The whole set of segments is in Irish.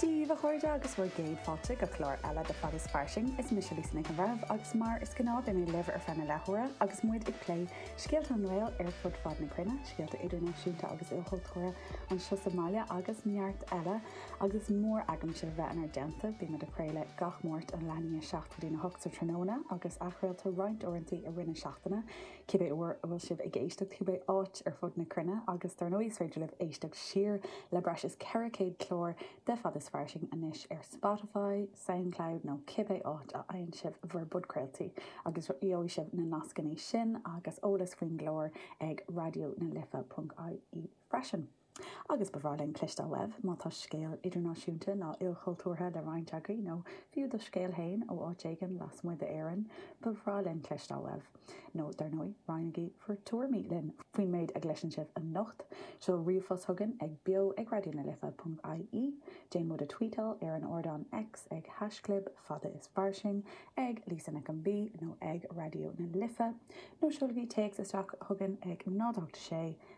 Dia dhaoibh a chairde agus bhur gcéad fáilte go clár eile de Fad is Fairsing. Is mise Lisa Nic an Bhreithimh agus mar is gnáth beidh mé libh ar feadh na leathuaire agus muid ag plé scéalta an nGael ar fud fad na cruinne, scéalta idirnáisiúnta agus ilchultúrtha anseo sa mbaile agus neart eile. Agus murar gnách libh bheith inár dteannta, bíonn muid ag craoladh gach Máirt na laethantaí seo ag leathuair tar éis 8 sa tráthnóna agus athchraoltar muid roinnt uaireantaí i rith na seachtaine. cibé uair a bhfuil sibh ag éisteacht cibé áit ar fud na cruinne agus dar ndóigh is féidir libh éisteacht siar le breis is 400 clár de Fad is Fairsing anois ar Spotify, Soundcloud nó cibé áit a fhaigheann sibh bhur bpodcraoltaí agus gheobhaidh sibh na nascannaí sin agus eolas faoin gclár ag raidionalife.ie freisin. Agus ba bhreá linn cloisteáil uaibh má tá scéal idirnáisiúnta ná ilchultúrtha le roinnt agaibh, nó fiú do scéal fhéin ó áit éigin lasmuigh d'Éirinn, ba bhreá linn cloisteáil uaibh. Nó dar ndóigh, roinnigí bhur dtuairimí linn faoin méid a gcloiseann sibh anocht. Seol ríomhphost chugainn ag beo@raidionalife ponc ie, déan muid a tweetáil ar an ardán X ag haischlib Fad is Fairsing, ag Lisa Nic an B, nó ag Raidió na Life, nó seolaigí téacs isteach chugainn ag 0 8 6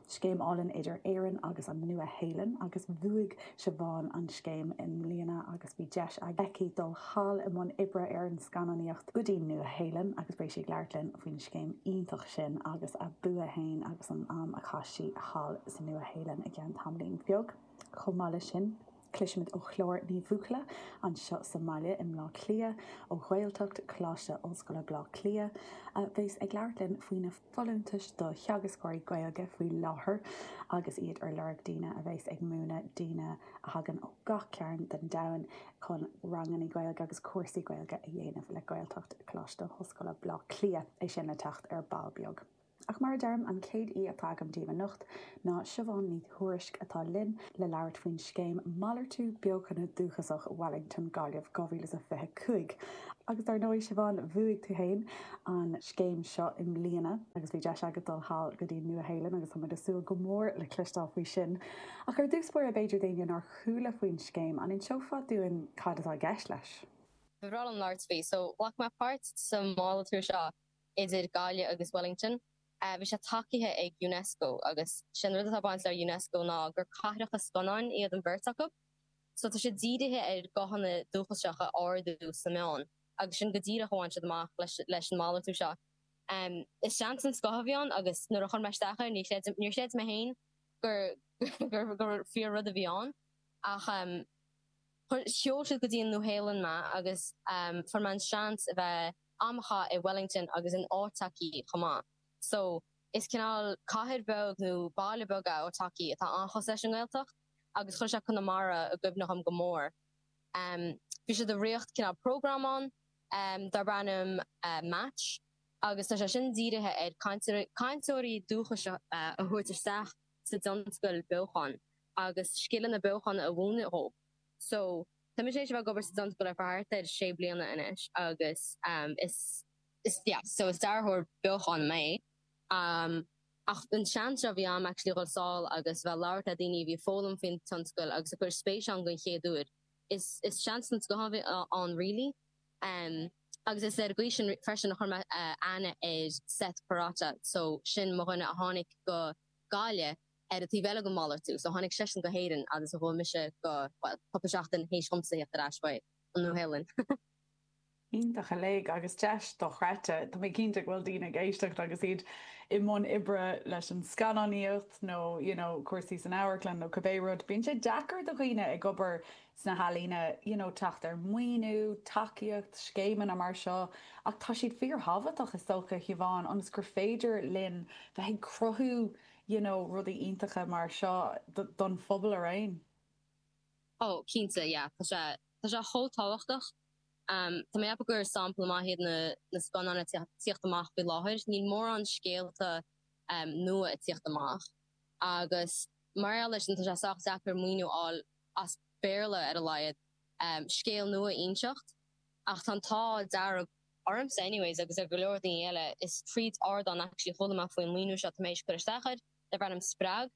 Scéim álainn idir Éirinn agus an Nua Shéalainn agus bhuaigh Siobhán an scéim i mbliana agus bhí deis aici dul thall i mbun oibre ar an scannánaíocht go dtí'n Nua Shéalainn agus beidh sí ag labhairt linn faoin scéim iontach sin agus a bua fhéin agus an am a chaith sí thall sa Nua Shéalainn i gceann tamaillín beag. Chomh maith leis sin. Cloisfimid ó Chlár Ní Bhuachalla, anseo sa mbaile i mBlá Cliath, ó Ghaeltacht Choláiste Ollscoile Blá Cliath, a bheas ag labhairt linn faoi na folúntais do theagascóirí Gaeilge faoi láthair agus iad ar lorg daoine a bheas ag múineadh daoine a thagann ó gach cearn den domhan chun ranganna Gaeilge agus cúrsaí Gaeilge a dhéanamh le Gaeltacht Choláiste Ollscoile Blá Cliath, é sin le teacht ar ball beag. Ach mar a deirim, an chéad aoi atá agam díbh anocht ná Siobhán Ní Thuairisg atá linn le labhairt faoin scéim Malartú Beochana Dúchasach Wellington, Gaillimh 2025. Agus dar ndóigh, Siobhán, bhuaigh tú fhéin an scéim seo i mbliana agus bhí deis agat dul thall go dtí'n Nua Shéalainn agus tá muid ag súil go mór le cloisteáil faoi sin. Ach ar dtús báire b'fhéidir d'éinne nár chuala faoin scéim, an inseofá dúinn cad atá i gceist leis? Ba bhreá liom labhairt faoi, so ghlac mé páirt sa málartú seo. idir Gaillimh agus Wellington. Bhí sé tacaithe ag Unesco agus sé an rud atá ag baint le Unesco ná gur cathracha scannáin iad an bheirt acu. So tá siad dírithe ar ghuthanna dúchasacha a ardú sna meáin agus sin go díreach a bhain siad amach leis an malartú seo. Is seans den scoth a bhí ann agus nuair a chuir mé isteach air níor chreid mé féin gur fíor rud a bhí ann ach sheol siad go dtí an Nua Shéalainn mé agus fuair mé an seans a bheith Bhí mé i Wellington agus in Ōtaki chomh maith. So, is cineál cathair bheag nó baile beag é Ōtaki atá an-chosúil leis an nGaeltacht agus chuir sé Conamara i gcuimhne dhom go mór. Em, bhí siad ag rith cineál prógráim ann, em, darb ainm Match agus tá sé sin dírithe ar cainteoirí, cainteoirí dúchais a thabhairt isteach sa dtionscail beochan agus scileanna beochan a mhúineadh dhóibh. So, tá mise tar éis a bheith ag obair sa tionscal ar feadh thart ar sé bliana anois agus is, is, yeah, so is dearthóir beochán mé ach an seans seo a bhí a'm actually a dhul sall agus bheith ag labhairt le daoine a bhí ag foghlaim faoin tionscal agus ag cuir spéis ann gon chéad uair, is, is seans den scoth a bhí ann really. Agus is ar an gcaoi sin freisin a chuir mé aithne ar Seth Parata so sin mo dhuine a tháinig go Gaillimh, ar an taobh eile den mhalartú. So tháinig seisean go hÉirinn agus chuaigh mise go, bhuel, cupla seachtain théis dhomsa theacht ar ais go Nua-Shéalainn. Iontach uilig agus deis do-chreidte. Tá mé cinnte go bhfuil daoine ag éisteacht agus iad i mbun oibre leis an scannánaíocht nó you know cúrsaí san amharclann nó cibé rud. Bíonn sé deacair do dhaoine ag obair sna healaíona you know teacht ar maoiniú, tacaíocht, scéimeanna mar seo ach tá siad fíor-thábhachtach is dócha a Shiobhán ionas gur féidir linn bheith ag cruthú you know, rudaí iontacha mar seo don phobal araon. Ó, cinnte, yeah, tá sé, tá sé chomh tábhachtach. Tá mé ag ceapadh gur sampla maith iad na, na scannáin atá ag tíocht amach faoi láthair. Níl mórán scéalta nua ag tíocht amach. Agus mar gheall air sin tá sé sách deacair maoiniú a fháil, as Béarla ar a laghad, scéal nua a inseacht. Ach tá an t-ádh dearg. Ormsa anyways agus ar go leor daoine eile, is tríd ardán actually chuala mé faoin maoiniú seo tá mé éis cur isteach air, darb ainm spreag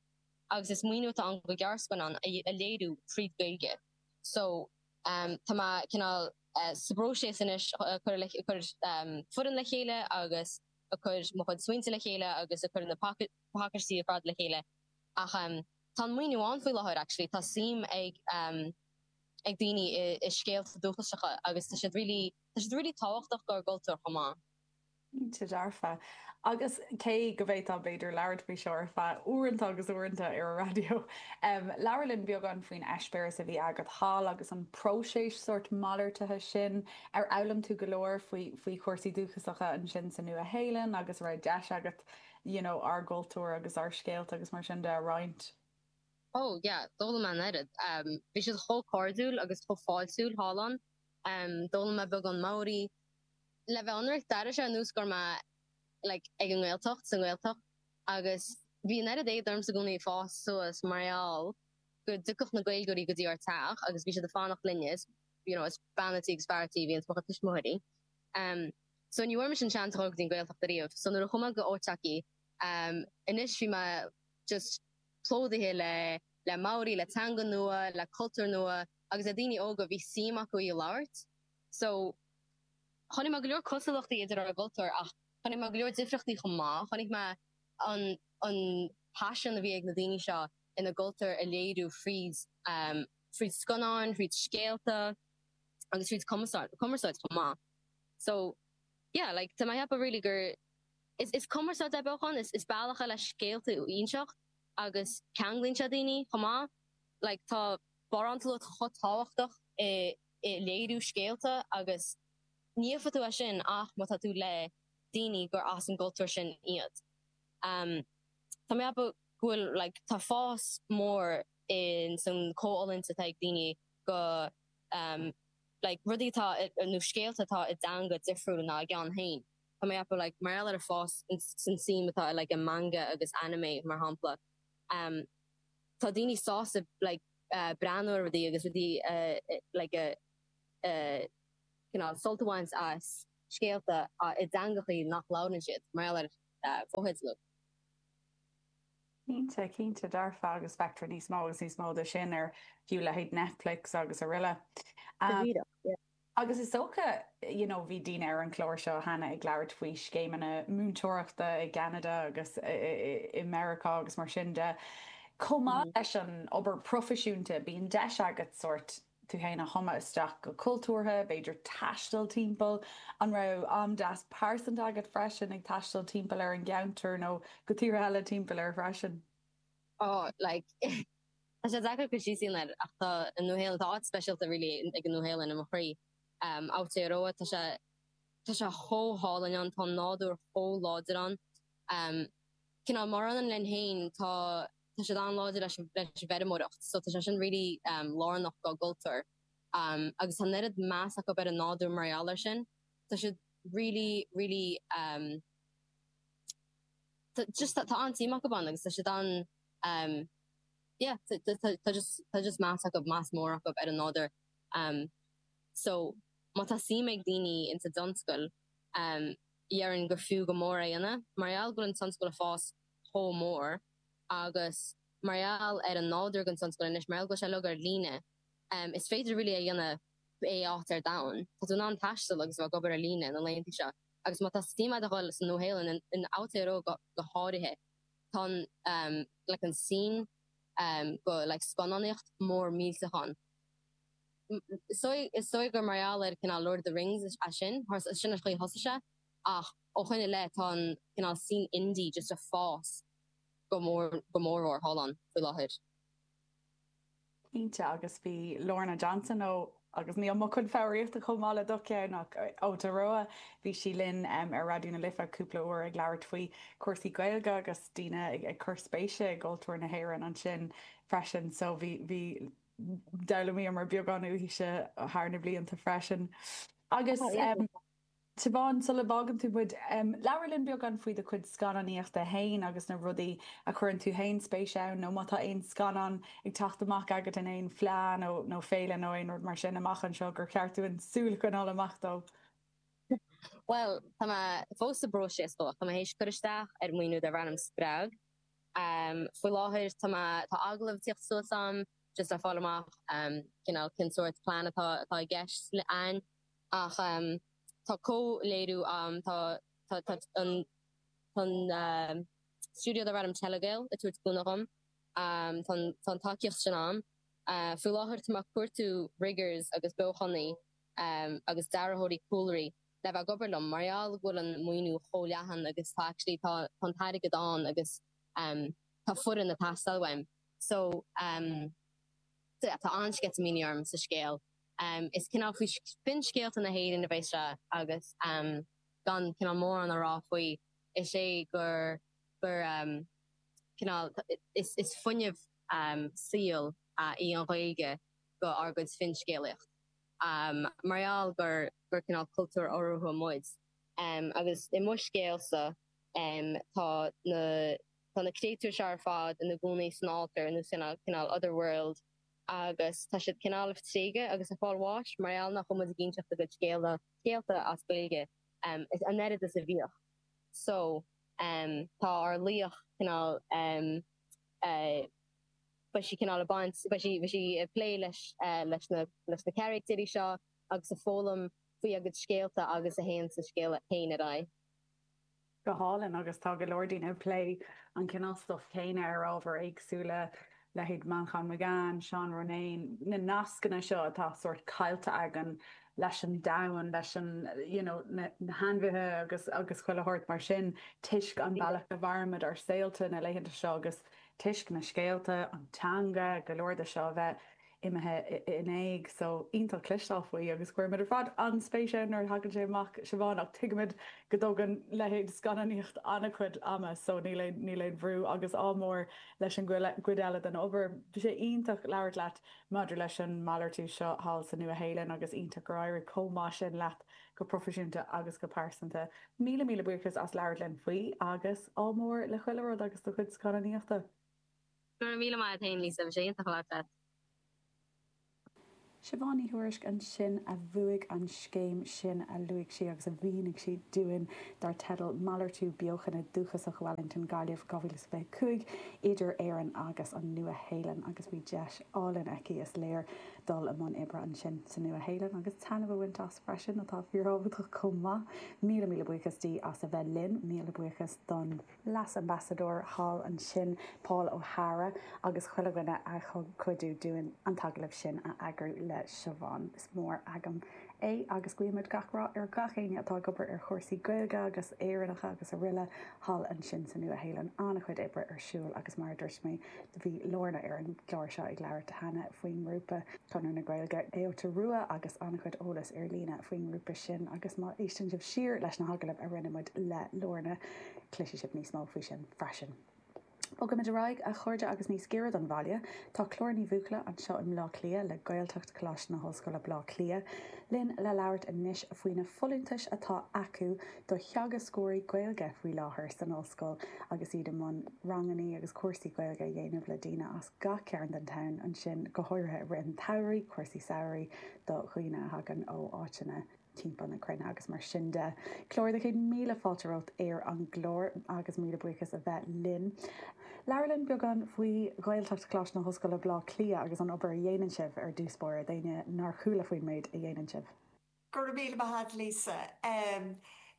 agus is maoiniú atá ann le gearrscannán a léiriú tríd Gaeilge so ehm tá mé cineál eh sa bpróiseas anois a cur le a cur ehm foireann le chéile agus a cur mo chuid smaointe le chéile agus a cur na paca pacaistí ar fad le chéile ach ehm tá an maoiniú ann faoi láthair actually tá suim ag ehm ag daoine i i scéalta dúchasacha agus tá siad really Tá siad really tábhachtach dár gcultúr chomh maith. Cinnte dearfa. Agus cé go bhféadfá b'fhéidir labhairt faoi seo ar feadh uaireanta agus uaireanta ar an raidió. Labhair linn beagán faoin eispéireas a bhí agat thall agus an próiseas sórt malartaithe sin. Ar fhoghlaim tú go leor faoi chúrsaí dúchasacha ansin sa Nua Shéalainn agus an raibh deis agat you know ár gcultúr agus ár scéalta agus mar sin de a roinnt? Oh yeah, d'fhoghlaim mé an oiread. Bhí siad chomh cairdiúil agus chomh fáiltiúil thall ann. D'fhoghlaim mé beagán Maori. Le bheith ionraic, d'airigh sé ar nós gur mé like ag an nGaeltacht, sa nGaeltacht agus bhí an oiread éad ormsa i gcónaí ag fás suas mar gheall go dtiocfadh na Gaeilgeoirí go dtí ár teach agus bhí siad ag fanacht linn is you know is bean a' tí agus fear a' tí a bhí ins mo chuid tuismitheoirí. So ní bhfuair mise an seans a dhul go dtí an Gaeltacht ariamh so nuair a chuaigh mé go Otaki anois bhí mé just plódaithe le le Maori, le teanga nua, le cultúr nua. agus le daoine óga a bhí suim acu í a labhairt so chonaic mé go leor cosúlachtaí idir ár gcultúir ach chonaic mé go leor difríochtaí chomh maith. Chonaic mé an an paisean a bhí ag na daoine seo ina gcultúr a léiriú fríd fríd scannáin, fríd scéalta agus fríd cumarsáid chomh maith so yeah like tá mé a cheapadh really gur is is cumarsáid é beochán, is is bealach é le scéalta a inseacht agus ceanglaíonn sé daoine chomh maith like tá. barántúlacht chomh tábhachtach i léiriú scéalta agus ní thuigfeadh tú é sin ach amháin má tá tú le daoine gur as an gcultúr sin iad. Tá mé ceapadh go bhfuil like tá fás mór ins an comhfhulaingt atá ag daoine do like rudaí atá nó scéalta atá i dteanga difriúil ná a gceann féin. Tá mé ceapadh like mar gheall ar an fás ins an suim atá i like i manga agus anime mar shampla. tá daoine sásta like breathnú ar rudaí agus rudaí a like a cineál sult a bhaint as scéalta ach i dteangachaí nach labhrann siad, mar gheall ar fotheidil. Cinnte, cinnte, dearfa agus feictear níos mó agus níos mó de sin ar fiú leithéid Netflix agus aroile. Go díreach, yeah. Agus is dócha, you know bhí daoine ar an chlár seo cheana ag labhairt faoi scéimeanna múinteoireachta i gCeanada agus i Meiriceá agus mar sin de. Chomh maith leis an obair proifisiúnta bíonn deis agat sórt, tú fhéin a thumadh isteach go cultúrtha, b'fhéidir taisteal timpeall. An raibh am deas pearsanta agat freisin ag taisteal timpeall ar an gceantar nó go tíortha eile timpeall air freisin? Oh, like, Tá sé deacair cur síos a dhéanamh air ach tá an Nua Shéalainn, tá áit speisialta really ag an Nua Shéalainn i mo chroí. B'aoibhinn liom é, tá sé, tá sé chomh hálainn ann, tá an nádúr chomh láidir ann. Cineál mar ionann linn féin tá, tá siad an-láidir leis an, leis an bhfeirmeoireacht so tá sé sin really lárnach dá gcultúr agus tá an oiread meas acub ar an nádúr mar gheall ar sin. Tá siad really, really, tá just, tá an-tsuim acub ann agus tá siad an, Um yeah tá just tá just tá just meas acub meas mór acub ar an nádúr. Um so má tá suim ag daoine in sa dtionscal um dhéarfainn gur fiú go mór é a dhéanamh mar gheall go bhfuil an tionscal ag fás chomh mór agus mar gheall ar an nádúr den tionscal anois mar gheall go bhfuil sé uilig ar líne um is féidir really é a dhéanamh pé áit ar domhan. Tá tú in ann taisteal agus bheith ag obair ar líne na laethanta seo agus má tá suim a'd a dhul sa Nua Shéalainn in in Aotearoa go go háirithe. Tá'n like an scene like scannánaíocht mór millteach ann. Is dóigh is dóigh gur mar gheall ar cineál Lord of the Rings sin, sin an chaoi a thosaigh sé ach ó shoin i leith tá an cineál scene indie just a' fás go go mór mór thall ann faoi láthair. Cinnte agus bhí Lorna Johnson ó, agus níl mo chuid foghraíochta chomh maith le do cheann ach ó Aotearoa, bhí sí linn ar Raidió na Life cúpla uair ag labhairt faoi chúrsaí Gaeilge agus daoine ag cur spéise i gcultúr na hÉireann ansin freisin so bhí, bhí, d'fhoghlaimíomar beagán uaithise thar na blianta freisin. Agus. Siobhán, Sula bhfágann tú muid, labhair linn beagán faoi do chuid scannánaíochta fhéin agus na rudaí a chuireann tú fhéin spéis ann nó má tá aon scannán ag teacht amach agat in aon fleadh nó nó féile nó aon rud mar sin amach anseo gur cheart dúinn súil a choinneáil amach dó. Bhuel, tá mé fós sa bpróiseas dó ach tá mé th'éis cur isteach ar mhaoiniú darb ainm Spreag. Faoi láthair tá mé, tá agallamh ag tíocht suas a'm just le fáil amach cineál cén sórt plean atá atá i gceist a'inn. Ach tá comhléiriú ann, tá an stiúideo darb ainm Telegael ag tabhairt cúnamh dhom, tá an tacaíocht sin ann. Faoi láthair tá mé ag cuartú riggers agus beochanaí agus dearthóirí cúlraí le bheith ag obair liom mar gheall go bhfuil an maoiniú chomh leathan agus tá actually tá an t-airgead ann agus tá foireann ag teastáil uaim. So tá an-sceitimíní orm. So scéal. Is cineál faoi finscéalta na hÉireann a bheas sé agus gan cineál mórán a rá faoi is é gur gur cineál is is fuinneamh saoil í an Ghaeilge dhár gcuid finscéalaíocht mar gheall gur gur cineál cultúr oral muid. Agus i mo scéalsa tá na tá na créatúir seo ar fad ina gcónaí san alltar nó san cineál other world. agus tá siad cineál ag tréigeadh agus ag fáil bháis mar gheall nach bhfuil muid ag inseacht a gcuid scéala, scéalta as Gaeilge an oiread is a bhíodh. So, tá ár laoch cineál, beidh sí cineál ag baint, beidh sí, beidh sí ag plé leis, leis na, leis na caractéirí seo agus ag foghlaim faoi a gcuid scéalta agus de réir mar a théann an scéal féin ar aghaidh. go hálainn agus tá go leor daoine ag plé an cineál stuif céanna ar ábhair éagsúla, leithéid Manchán Magan, Seán Ronayne, na nascanna seo atá sórt caillte againn leis an domhan, leis an, you know, na hainmhithe agus, agus chuile shórt mar sin toisc an bealach a mhairimid ár saolta na laethanta seo agus toisc na scéalta, an teanga, go leor de seo a bheith. imithe in éag so iontach cloisteáil faoi agus cuirimid ar fad an-spéis ann nuair a thagann sé amach, Siobhán, ach tuigimid go dtógann leithéid scannánaíocht an-chuid ama so níl aon bhrú agus ádh mór leis an gcuid eile den obair. Bhí sé iontach labhairt leat maidir leis an malartú seo thall sa Nua-Shéalainn agus iontach gur éirigh chomh maith sin leat go proifisiúnta agus go pearsanta. Míle míle buíochas as labhairt linn faoi agus ádh mór le chuile rud agus do chuid scannánaíochta. Go raibh míle maith a'd fhéin, Lisa, bhí sé iontach labhairt leat. Siobhán Ní Thuairisg ansin a bhuaigh an scéim sin a luaigh sí agus a mhínigh sí dúinn dar teideal 'Malartú Beochana Dúchasach Wellington, Gaillimh 2025 idir Éirinn agus an Nua-Shéalainn' agus bhí deis álainn aici, is léir, dul i mbun oibre ansin sa Nua-Shéalainn agus taitneamh a bhaint as freisin, atá fíorthábhachtach chomh maith. Míle, míle buíochas di as a bheith linn. Míle buíochas don. Leas-Ambasadóir thall ansin, Paul O'Hara, agus chuile dhuine a thug cuidiú dúinn an t-agallamh sin a eagrú le Siobhán. Is mór agam é agus guímid gach rath ar gach éinne atá ag obair ar chúrsaí Gaeilge agus Éireannacha agus araile thall ansin sa Nua-Shéalainn. An-chuid oibre ar siúl agus mar a dúirt mé, bhí Lorna ar an gclár seo ag labhairt cheana faoin ngrúpa, Conradh na Gaeilge Aotearoa agus an-chuid eolas ar líne faoin ngrúpa sin agus má éisteann sibh siar leis na hagallaimh a rinne muid le Lorna, Cloisfidh sibh níos mó faoi sin freisin. Bogaimid ar aghaidh, a chairde, agus níos giorra don bhaile. Tá Clár Ní Bhuachalla anseo i mBleá Cliath, le Gaeltacht Coláiste na hOllscoile Bleá Cliath, linn le labhairt anois faoi na folúntais atá acu do theagascóirí Gaeilge faoi láthair san Ollscoil agus iad i mbun rangannaí agus cúrsaí Gaeilge a dhéanamh le daoine as gach cearn den domhan ansin, go háirithe i rith an tsamhraidh, cúrsaí samhraidh do dhaoine a thagann ó áiteanna. timpeall na cruinne agus mar sin de. Clár, céad míle fáilte romhat ar an gclár agus míle buíochas as a bheith linn. Labhair linn beagán faoi Ghaeltacht Choláiste na hOllscoile Baile Átha Cliath agus an obair a dhéanann sibh ar dtús báire d'éinne nár chuala faoin méid a dhéanann sibh. Go raibh míle maith a'd Lisa.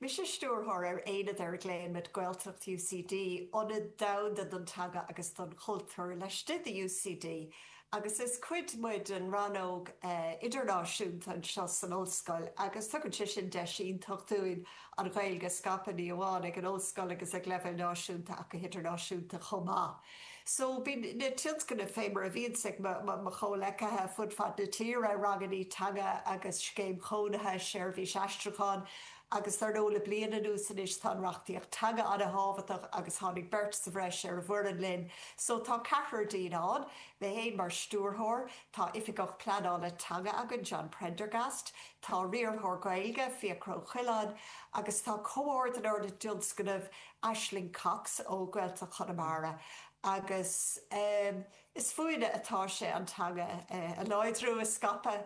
Mise Stiúrthóir ar Aonad ar a ghlaoimid Gaeltacht UCD, Ionad Domhanda don Teanga agus don Chultúr laistigh de UCD. Agus is cuid muid den rannóg idirnáisiúnta anseo san Ollscoil agus tugann sé sin deis iontach dúinn an Ghaeilge a scaipeadh, ní amháin ag an Ollscoil agus ag leibhéal náisiúnta ach go hidirnáisiúnta chomh maith. So bíonn na tionscnaimh fé mar a bhíonns ag mo chomhleacaithe fud fad na tíre, rangannaí teanga agus scéim chónaithe, seirbhís aistriúcháin, Agus dar ndóigh le bliain anuas anois tá an reachtaíocht teanga an-thábhachtach agus tháinig beirt sa bhreis ar an bhfoireann linn so tá ceathrar dínn ann, mé fhéin mar stiúrthóir, tá Oifigeach Pleanála Teanga againn, John Prendergast, tá Riarthóir Gaeilge, Fiachra Ó Coileáin, agus tá comhordaitheoir na dtionscnamh Aisling Cox ó Ghaeltacht Chonamara agus ehm is fúinne atá sé an teanga a láidriú, a scaipeadh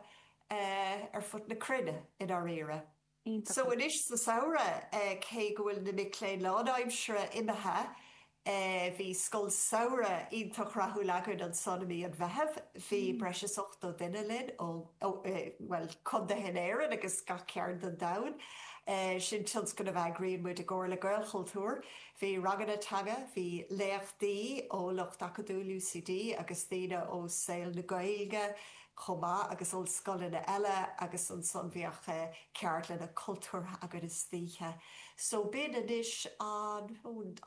ar fud na cruinne i ndáiríre. iontach. So anois sa samhradh cé go bhfuil na mic léinn lánaimseartha imithe bhí scoil samhraidh iontach rathúil againn ansan i mí an Mheithimh. Bhí breis is 80 duine linn ó, bhuel, chontaetha in Éirinn agus gach cearn den domhan. Sin tionscnamh a eagraíonn muid i gcomhar le Gaelchultúr. Bhí ranganna teanga, bhí léachtaí ó lucht acadúil UCD agus daoine ó saol na Gaeilge. chomh maith agus ollscoileanna eile agus ansan bheadh ceardlanna cultúrtha againn istoíche so b'in anois an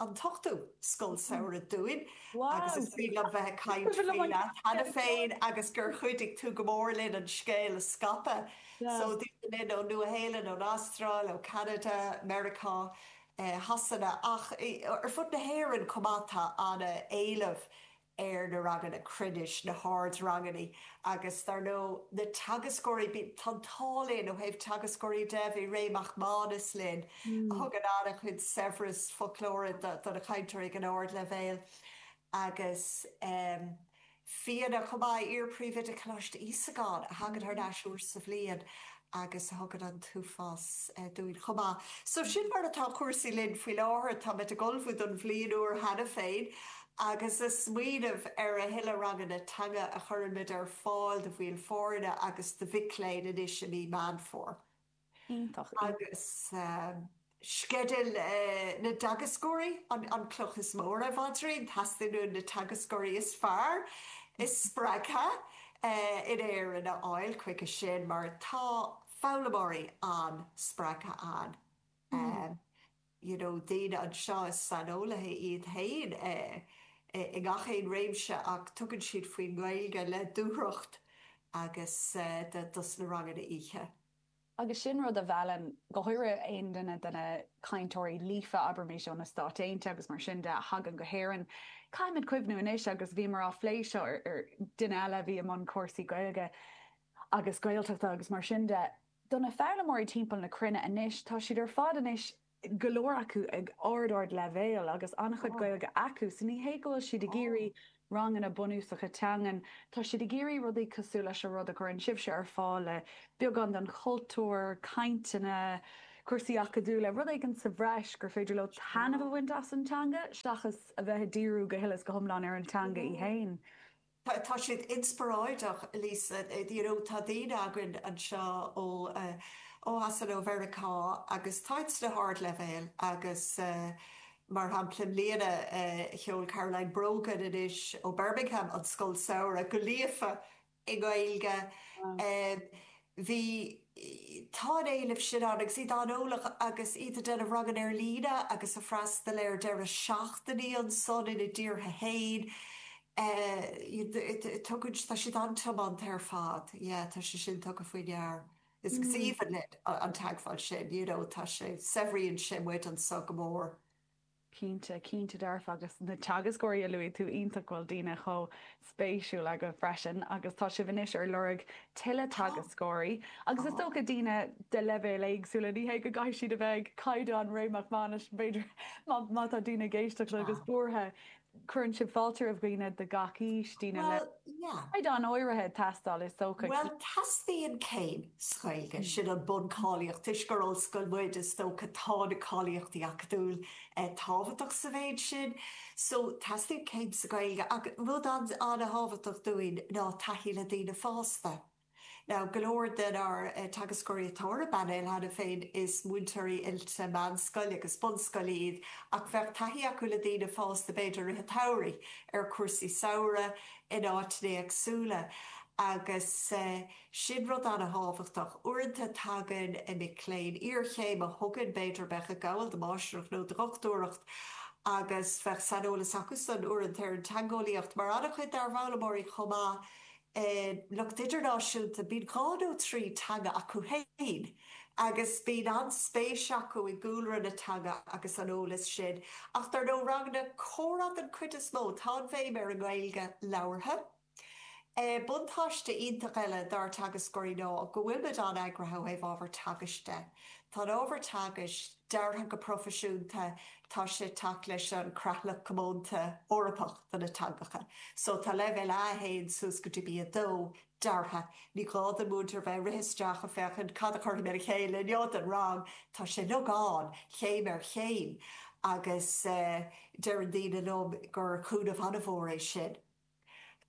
an t-ochtú Scoil Samhraidh dúinn agus is cuimhin liom bheith ag caint leat cheana féin agus gur chuidigh tú go mór linn an scéal a scaipeadh so daoine linn ón Nua-Shéalainn, ón Astráil, ó Cheanada, Meiriceá, Shasana ach ar fud na hÉireann chomh maith tá an-éileamh ar na ranganna cruinnis, sna hard-rangannaí agus dar ndó na teagascóirí, bíonn, tá an t-ádh linn ó thaobh teagascóirí de, bhí Ray Mac Mánus linn a thugann an-chuid saibhreas foclóra do na cainteoirí ag an ard-leibhéal agus ehm Fíona chomh maith, iar-phríomhoide Coláiste Íosagáin a thagann thar n-ais uair sa bhliain agus a thugann an t-uafás dúinn chomh maith. So sin mar atá cúrsaí linn faoi láthair. Táimid ag ullmhú don bhliain úr cheana féin agus ag smaoineamh ar a thuilleadh ranganna teanga a chuirfimid ar fáil do bhaill foirne agus do mhic léinn anois i mí Meán Fómhair. Iontach, iontach. Agus. Sceideal na dteagascóirí an cloch is mó ar an bpaidrín. Teastaíonn uainn na teagascóirí is fearr, is spreagtha in Éirinn a fháil chuige sin mar tá foghlaimeoirí an-spreagtha ann, you know daoine anseo is saineolaithe iad féin i ngach aon réimse ach tugann siad faoin nGaeilge le dúthracht agus dos na ranganna oíche. Agus sin rud a mheallann go háirithe aon duine de na cainteoirí líofa, abraimís ó na Stáit Aontaithe agus mar sin de, a thagann go hÉirinn. Caithfimid cuimhniú anois, agus bhíomar á phlé seo ar, duine eile a bhí i mbun cúrsaí Gaeilge agus Gaeltachta agus mar sin de, do na foghlaimeoirí timpeall na cruinne anois, tá siad ar fad anois go leor acu ag ard ard leibhéal agus an-chuid Gaeilge acu so ní hé go bhfuil siad ag iarraidh ranganna bunúsacha teangan, tá siad ag iarraidh rudaí cosúil leis an rud a chuireann sibhse ar fáil le beagán den chultúr, cainteanna, cúrsaí acadúla, rud éigin sa bhreis gur féidir leo taitneamh a bhaint as an teanga seachas a bheith ag díriú go huile is go hiomlán ar an teanga í féin. Tá, tá siad inspioráideach, Lisa, you know, tá daoine againn anseo ó, ó Shasana, ó Mheiriceá agus tá siad sna hardleibhéil agus mar shampla i mbliana sheol Caroline Brogan anois ó Birmingham an Scoil Samhraidh go líofa i nGaeilge. Bhí, tá an éileamh sin ann agus iad an-eolach agus iad ag déanamh ranganna ar líne agus ag freastal ar deireadh seachtainí ansan ina dtíortha fhéin eh tugann tá siad an-tiomanta ar fad yeah tá sé sin tugtha faoi ndeara agus is aoibhinn linn an teagmháil sin you know tá sé saibhríonn sé muid anso go mór. Cinnte, cinnte dearfa agus na teagascóirí a luaigh tú iontach bhfuil daoine chomh spéisiúil agaibh freisin agus tá sibh anois ar lorg tuilleadh teagascóirí agus is dócha daoine de leibhéil éagsúla ní hé go gcaithfidh siad a bheith ag caighdeán Ray Mac Mánais b'fhéidir má má tá daoine ag éisteacht agus buartha Cuireann sibh fáilte roimh dhaoine de gach aois, daoine le caighdeán áirithe ag teastáil, is dócha. Bhuel, teastaíonn céim sa Ghaeilge, sin an buncháilíocht. Toisc gur ollscoil muid, is dócha, tá na cáilíochtaí acadúla tábhachtach sa mhéid sin. So, teastaíonn céim sa Ghaeilge. Ach rud an-thábhachtach dúinn ná taithí le daoine fásta. Now, go leor den ár teagascóirí atá ar an bpainéal cheana féin is múinteoirí oilte meánscoile agus bunscoile iad ach bheadh taithí acu le daoine fásta b'fhéidir i rith an tsamhraidh ar chúrsaí samhraidh in áiteanna éagsúla agus sin rud an-thábhachtach. Uaireanta tagann mic léinn iarchéime chugainn b'fhéidir a bheadh ag gabháil do mháistreacht nó do dhochtúireacht agus bheadh saineolas acu san uaireanta ar an teangeolaíocht mar an-chuid dár bhfoghlaimeoirí chomh maith an lucht idirnáisiúnta, bíonn dhá nó trí teanga acu féin agus bíonn an-spéis acu i gcúlra na teanga agus an eolas sin. Ach dar ndóigh, ranganna comhrá den chuid is mó. Tá an bhéim ar an nGaeilge labhartha. Buntáiste iontach eile dár dteagascóirí ná go bhfuilimid an-eagraithe ó thaobh ábhar teagaisc de. Tá an ábhar teagaisc. deartha go proifisiúnta tá sé ag teacht leis an Creatlach Comónta Eorpach do na Teangacha. So tá Leibhéal A1 suas go dtí B2 deartha. Ní gá don mhúinteoir bheith ag rith isteach ag féachaint cad a chuirfidh mé le chéile inniu don rang. Tá sé ansan, céim ar chéim, agus deireann daoine liom gur cúnamh an-mhór é sin.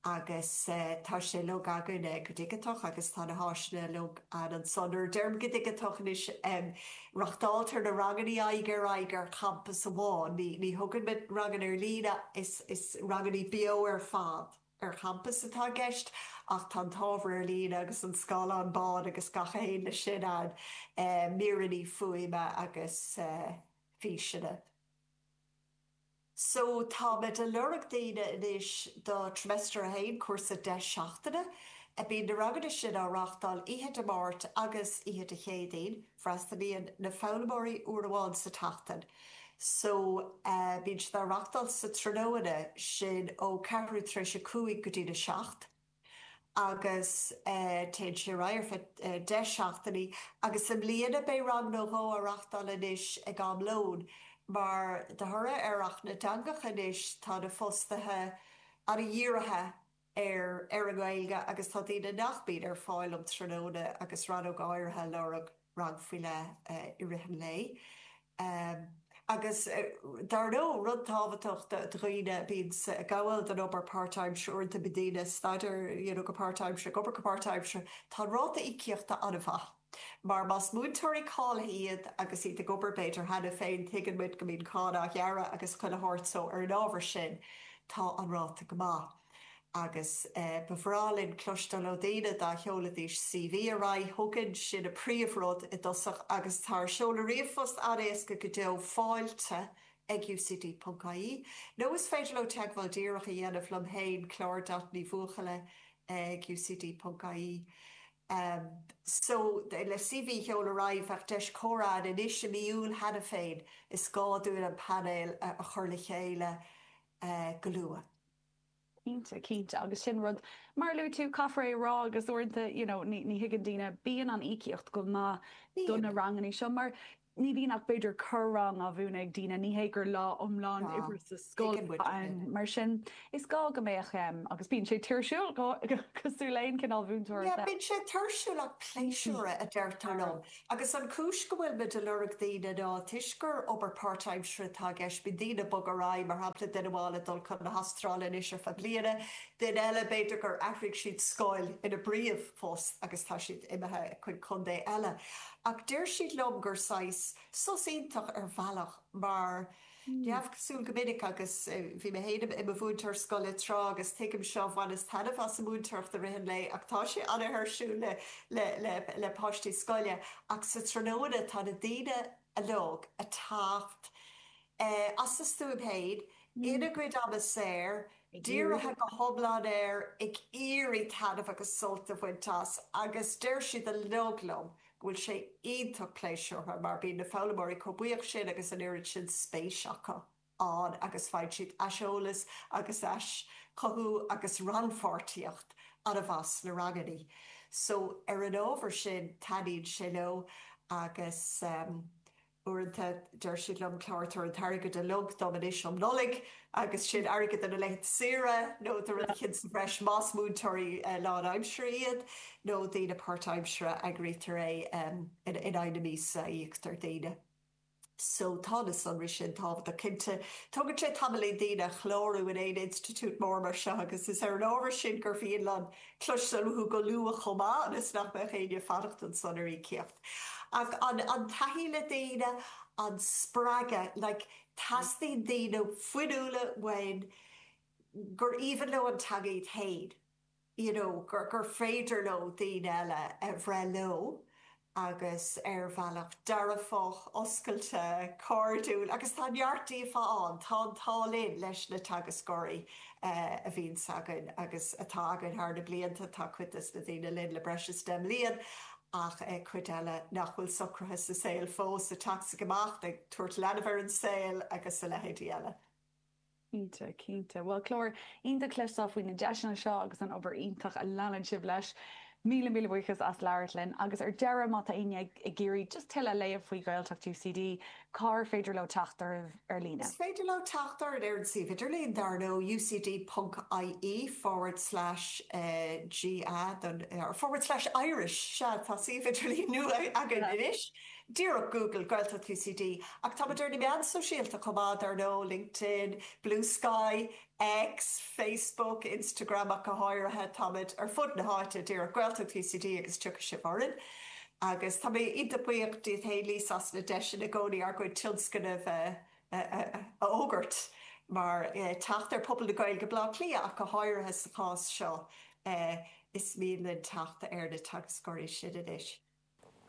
agus tá sé uilig againne go digiteach agus tá na háiseanna uilig ann ansin. Nuair a deirim go digiteach anois reachtáiltear na rangannaí aghaidh ar aghaidh ar champas amháin. Ní thugaimid ranganna ar líne, is rangannaí beo ar fad ar champas atá i gceist ach tá an t-ábhar ar líne agus an scáileán bán agus gach a théann leis sin ann, míreannaí fuaime agus físeanna. So táimid a' lorg daoine anois do Trimester 1, cúrsa 10 seachtaine. Bíonn na ranganna sin á reachtáil oíche Dé Máirt agus oíche Dé Céadaoin. Freastalaíonn na foghlaimeoirí uair amháin sa tseachtain. So bíonn siad á reachtáil sa tráthnóna, sin ó ceathrú tar éis a cúig go dtí a seacht. agus téann sé ar aghaidh ar feadh deich seachtainí agus i mbliana beidh rang nó dhó á reachtáil anois ag am lóin mar de thoradh ar Acht na dTeangacha anois tá na fostaithe an-dhírithe ar an nGaeilge agus tá daoine nach mbíonn ar fáil um tráthnóna agus rannóg áirithe ag lorg. rang faoi leith i rith an lae agus dar ndó rud tábhachtach do dhaoine bíonns ag gabháil don obair páirtaimseartha uaireanta bíonn daoine ag staidear you know go páirtaimseartha ag obair go páirtaimseartha tá an ráta íocaíochta an-mhaith mar más múinteoirí cáilithe iad agus iad ag obair b'fhéidir cheana féin tuigeann muid go mbíonn cáin á gearradh agus chuile shórt so ar an ábhar sin tá an ráta go maith. Agus ba bhreá linn cloisteáil ó daoine, dá sheolfaidís CV ar aghaidh chugainn, sin an príomhrud i dtosach agus tá ár seoladh ríomhphost an-éasca go deo, fáilte ag ucd ponc ie, nó is féidir leo teagmháil díreach a dhéanamh liom féin, Clár Dot Ní Bhuachalla ag ucd ponc ie. So, le CV a sheoladh ar aghaidh bheadh deis comhrá ann anois i mí Iúil cheana féin, is gá dúinn an painéal a chur le chéile go luath. Cinnte, cinnte agus sin rud, mar a luaigh tú, caithfear é a rá agus uaireanta you know ní ní thuigeann daoine, bíonn an íocaíocht go maith do na Bíonn. rangannaí seo mar ní bhíonn ach b'fhéidir corr-rang á mhúineadh ag daoine, ní hé gur lá iomlán Tá, oibre sa scoil tuigeann muid atá ann. sin. Mar sin is gá go mbeadh em agus bíonn sé tuirsiúil cosúil le aon chineál mhúinteoireacht Yeah, eile. bíonn sé tuirsiúil ach pléisiúrtha a deirtear liom. Agus an cúis go bhfuilimid ag lorg daoine ná toisc gur obair páirtaimseartha atá i gceist, bíonn daoine ag bogadh ar aghaidh, mar shampla duine amháin ag dul chun na hAstráile anois ar feadh bliana, duine eile b'fhéidir gur athraigh siad scoil ina bpríomhphost agus tá siad imithe chuig contae eile. Ach deir siad liom gur saghas sos iontach ar bhealach mar. Ní hamháin cosúil go minic agus bhí mé féin i mo mhúinteoir scoile tráth agus tuigim seo, bhaineas taitneamh as an múinteoireacht i rith an lae ach tá sé an-thuirsiúil le páistí scoile ach sa tráthnóna tá na daoine uilig a' teacht as a stuaim féin, ina gcuid ama saor, dírithe go hiomlán air, ag iarraidh taitneamh agus sult a bhaint as agus deir siad uilig liom go bhfuil sé iontach pléisiúrtha mar bíonn na foghlaimeoirí chomh buíoch sin agus an oiread sin spéis acu ann agus faigheann siad aiseolas agus aischothú agus rannpháirtíocht ana-mhaith sna rangannaí so ar an ábhar sin taitníonn sé leo agus. Uaireanta deir siad liom Clár, tabhair an t-airgead uilig dom anois um Nollaig agus sin airgead do na laethanta saoire nó do rud eicint sa bhreis más múinteoirí lán-aimsire iad nó daoine páirt-aimsire eagraítear é in aghaidh na míosa a íoctar daoine so tá na sonraí sin tábhachtach cinnte. Tógann sé tamaillín daoine a chlárú in aon institiúid mór mar seo agus is ar an ábhar sin gur mhian liom cloisteáil uathu go luath chomh maith ionas nach mbeadh éinne ag fanacht ansan ar íocaíocht. Ach an an taithí le daoine, an spreagadh, like teastaíonn daoine fuinniúla uainn gur aoibhinn leo an teanga iad féin, you know gur gur féidir leo daoine eile a bhreith leo agus ar bhealach dearfach, oscailte, cairdiúil agus tá neart díobhtha ann, tá an t-ádh linn leis na teagascóirí a bhíonns againn agus atá againn thar na blianta, tá cuid des na daoine linn le breis is deich mbliain ach ag cuid eile nach bhfuil socraithe sa saol fós, a teacht 's ag imeacht, ag tabhairt leanbh ar an saol agus a leithéidí eile. Cinnte, cinnte. Bhuel, Clár, iontach a chloisteáil faoi na deiseanna seo agus an obair iontach a leanann sibh leis. Míle, míle buíochas as labhairt linn. Agus ar deireadh, má tá éinne ag iarraidh just tuilleadh a léamh faoi Ghaeltacht UCD, Cár féidir leo teacht oraibh ar líne? Is féidir leo teacht orainn ar an suíomh idirlín dar nó ucd.ie/ga/irish. Sea, tá suíomh idirlín nua againn anois, díreach Google, Gaeltacht UCD. Ach tá muid ar na meáin sóisialta chomh maith dar nó, LinkedIn, Bluesky, X, Facebook, Instagram ach go háirithe, táimid ar fud na háite, díreach Gaeltacht UCD agus tiocfaidh sibh orainn. Agus tá mé iontach buíoch díot fhéin Lisa as na deiseanna i gcónaí ár gcuid tionscnamh a fhógairt mar teacht ar phobal na Gaeilge i mBleá Cliath ach go háirithe sa chás seo. Is mian linn teacht ar na teagascóirí sin anois.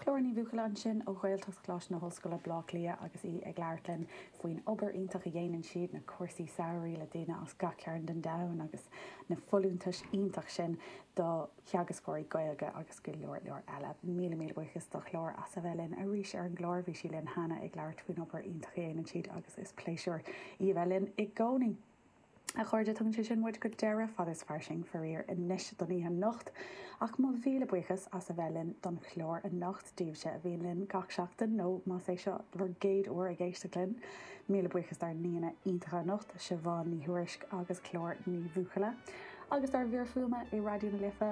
Clár Ní Bhuachalla ansin ó Ghaeltacht Choláiste na hOllscoile, Baile Átha Cliath agus í ag labhairt linn faoin obair iontach a dhéanann siad, na cúrsaí samhraidh le daoine as gach cearn den domhan agus na folúntais iontach sin do theagascóirí Gaeilge agus go leor leor eile. Míle míle buíochas do Chlár as a bheith linn arís ar an gclár. Bhí sí linn cheana ag labhairt faoin obair iontach a dhéanann siad agus is pléisiúr í a bheith linn i gcónaí. A chairde, tugann sé sin muid go deireadh Fada is Fairsing, faraor, anois don oíche anocht. Ach mo mhíle buíochas as a bheith linn don chlár anocht, daoibhse a bhíonn linn gach seachtain, nó más é seo bhur gcéad uair ag éisteacht linn, míle buíochas dár n-aíonna iontacha anocht, Siobhán Ní Thuairisg agus Clár Ní Bhuachalla, agus dár bhfir fuaime i Raidió na Life,